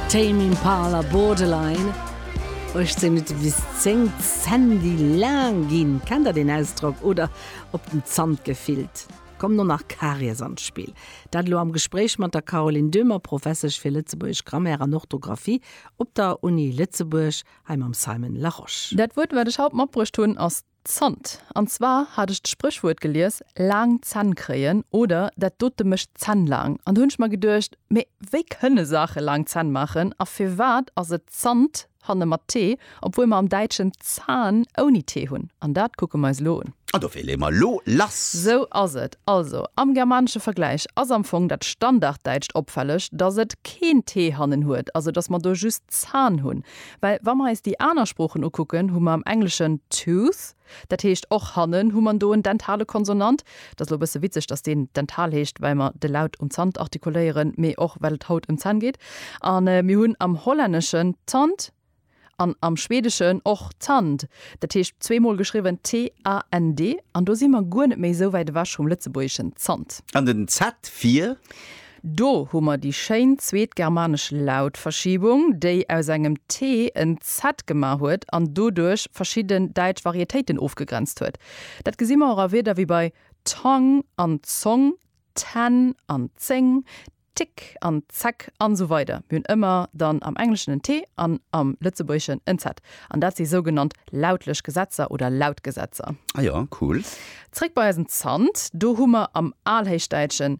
Tame Impala Borderline, 18 Minutte bis 10, Sandy laang ginn, kennt der deen Ausdrock? oder op den Zant gefillt, kommen och nach Karies an d'Spill. Dat elo am Gespréich mat der Caroline Döhmer, Professesch fir lëtzebuergesch Grammaire an Orthografie op der Uni Lëtzebuerg, hei mam Simon Larosche. Dat Wuert, wat ech haut matbruecht hunn, ass. Zant. An zwar hat ech d'Spréchwuert gelies, laang Zänn kréien oder dat dote mécht d'Zänn laang. An do hunn ech mer geduecht, mee wéi kënne Saache laang Zänn maachen a firwat ass et Zant hanne mat t, obwuel mer am Däitschen Zahn ouni t hunn? An dat kucke mer eis elo un. An dofir leeë mer elo lass. Sou ass et. Also, am germanesche Vergläich ass am Fong dat Standarddäitscht opfälleg, dass et keen t hannen huet, also dass mer do just Zahn hunn. Well wa mer eis déi aner Sproochen ukucken, hu mer am Engleschen tooth, dat heescht och hannen hu mer do en dentale Konsonant. Et ass elo e bësse witzeg, datt deen dental heescht, well mer de Laut um Zant artikuléieren, mee och well et haut ëm d'Zänn geet. A mir hunn am Hollänneschen tand an am Schweedeschen och tand, dat heescht zwee Mol geschriwwen t-a-n-d. An do si mer guer net méi esou wäit ewech vum Lëtzebuergeschen Zant. An den z fir? Do hu mer déi schéin zweet germanesch Lautverschiebung, déi aus engem t en z gemaach huet an doduerch verschidden däitsch Varietéiten ofgegrenzt huet. Dat gesi mer och a Wierder wéi bei Tong an Zong, ten an zéng, tick an zeck an esou weider Mir hunn ëmmer dann am Engleschen en t an am Lëtzebuergeschen en z. An dat si sougenannt lautlech Gesetzer oder Lautgesetzer. Ah jo, cool. Zréck bei eisen Zant. Do hu mer am Alhéichdäitschen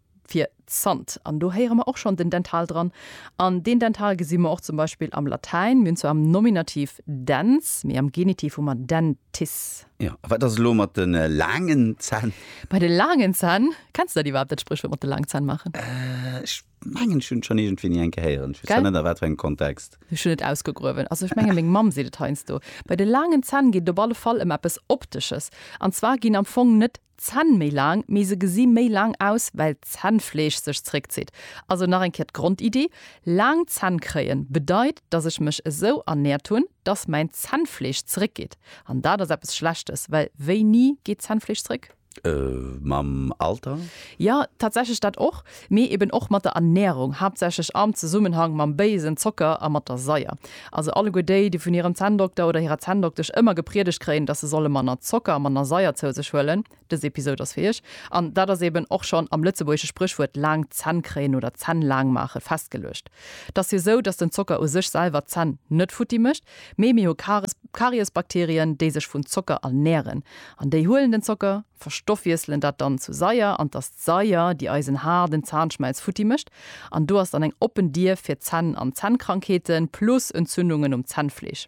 fir Zant. An do héiere mer och schonn den Dental dran. An deen Dental gesi mer och zum Beispill am Latäin. Mir hunn zwar am Nominativ dens, mee am Genitiv hu mer dentis. Jo, a wat ass elo mat de laangen Zänn? Bei de laangen Zänn, kenns de dat iwwerhaapt, dat Spréchwuert mat de laangen Zänn maachen? Ech mengen, ech hunn et schonn iergendwéi ni enke héieren. Ech weess zwar net a wat fir engem Kontext. Ech hunn et ausgegruewen. Also ech menge meng Mamm seet et heiansdo. Bei de laangen Zänn geet et op alle Fall ëm eppes Optesches. An zwar ginn am Fong net D'Zänn méi laang, mee se gesi méi laang aus, well d'Zännfleesch sech zréckzitt. Also nach eng Kéier d'Grondiddi, Laang Zänn kréien bedeit, dass ech mech esou ernäert hunn, dass mäin Zännfleesch zréckgeet. An dat ass eppes Schlechtes, well wéini geet d'Zännfleesch zréck? Mam Alter? Jo, tatsächlech dat och. Mee eben och mat der Ernährung, haaptsächlech am Zesummenhang mam béisen Zocker a mat der Saier. Also alleguer déi, déi vun hirem Zänndokter oder hirer Zänndoktesch ëmmer gepriedegt kréien, dass se solle manner Zocker a manner Saier zou sech huelen, dës Episod ass fir iech. An dat ass eben och schonn am lëtzebuergesche Spréchwuert laang Zänn kréien oder Zänn laang maache festgeluecht. T'ass jo esou, dass den Zocker u sech selwer d'Zänn net futti mécht, mee mir hu Karies, Kariesbakterien, déi sech vun Zocker ernähren. An déi huelen den Zocker, verstoffwiesselen dat dann zu Saier an t'ass. d'Saier, déi eisen Har, den Zahnschmelz, futti mécht. An do ass dann eng oppen Dier fir d'Zänn an Zännkrankheeten, plus Entzündungen um Zännfleesch.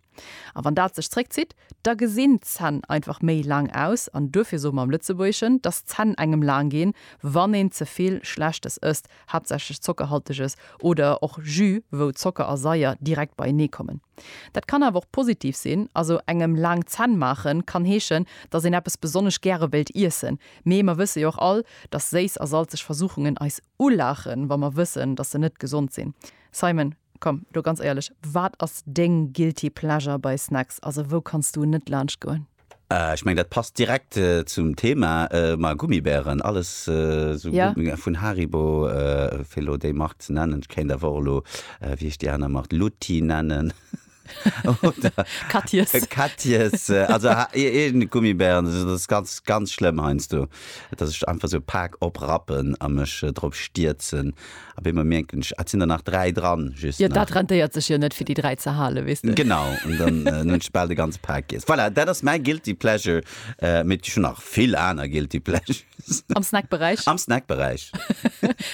A wann dat sech zréckzitt, da gesinn d'Zänn einfach méi laang aus. An duerfir soe mer am Lëtzebuergeschen, dass d'Zänn engem laang ginn, wann een ze vill Schlechtes ësst, haaptsächlech Zockerhalteges oder och Jus, wou Zocker a Saier direkt beienee kommen. Dat kann awer och positiv sinn. Also engem laang Zänn maachen kann heeschen, dass een eppes besonnesch gäre wéilt iessen. Mee mer wësse jo och all, dass séiss a salzeg Versuchungen eis ulaachen, wa mer wëssen, dass se net gesond sinn. Simon, komm elo ganz éierlech, wat ass deng guilty pleasure bei Snacks? Also, wou kanns du net laanscht goen? Ech meng, dat passt direkt zum Thema, ma Gummibären, alles esou Ja. Gummibären vun Haribo, fir elo déi Mark ze nennen. Ech kéint awer och elo, wéi heescht déi aner Mark, Lutti nennen. oder Katjes. Katjes, also eegene Gummibären, dat ass ganz, ganz schlëmm heiansdo, datt ech einfach esou e Pak oprappen a mech drop stierzen. Op eemol mierken ech, ah, et sinn der nach dräi dran, just nach. Jo, dat rentéiert sech jo net, fir déi dräi ze halen, weess de. Genau, an dann hunn ech bal de ganze Pak giess. Voilà, dat ass mäi guilty pleasure, mee et gi scho nach vill aner guilty pleasures. Am Snackberäich? Am Snackberäich.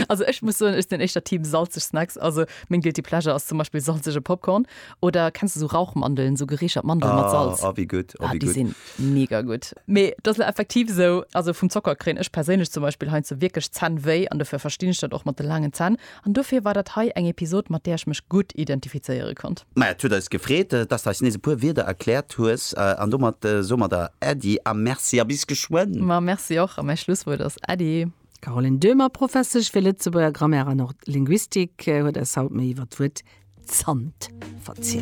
also ech muss soen, ech sinn éischter Team salzeg Snacks. Also meng guilty pleasure ass zum Beispill salzege Popcorn oder kenns du esou Rauchmandeln, esou gereechert Mandeln ah, mat Salz? Ah, wie gutt. Ah, ah, déi sinn mega gutt. Mee dat ass effektiv esou, also vum Zocker kréien ech perséinlech zum Beispill heiansdo wierklech Zänn wéi an dofir verstinn ech dat och mat de laangen Zänn. An dofir war dat hei eng Episod, mat där ech mech gutt identifizéiere konnt. Maja, et huet eis gefreet, dass de eis nees e puer Wierder erkläert hues. An domat soe mer der Äddi a Merci a bis geschwënn! Ma Merci och, a mäi Schlusswuert ass Äddi! D'Caroline Döhmer, Professesch fir Lëtzebuerger Grammaire an och Linguistik, huet eis haut méi iwwer d'Wuert Zant verzielt.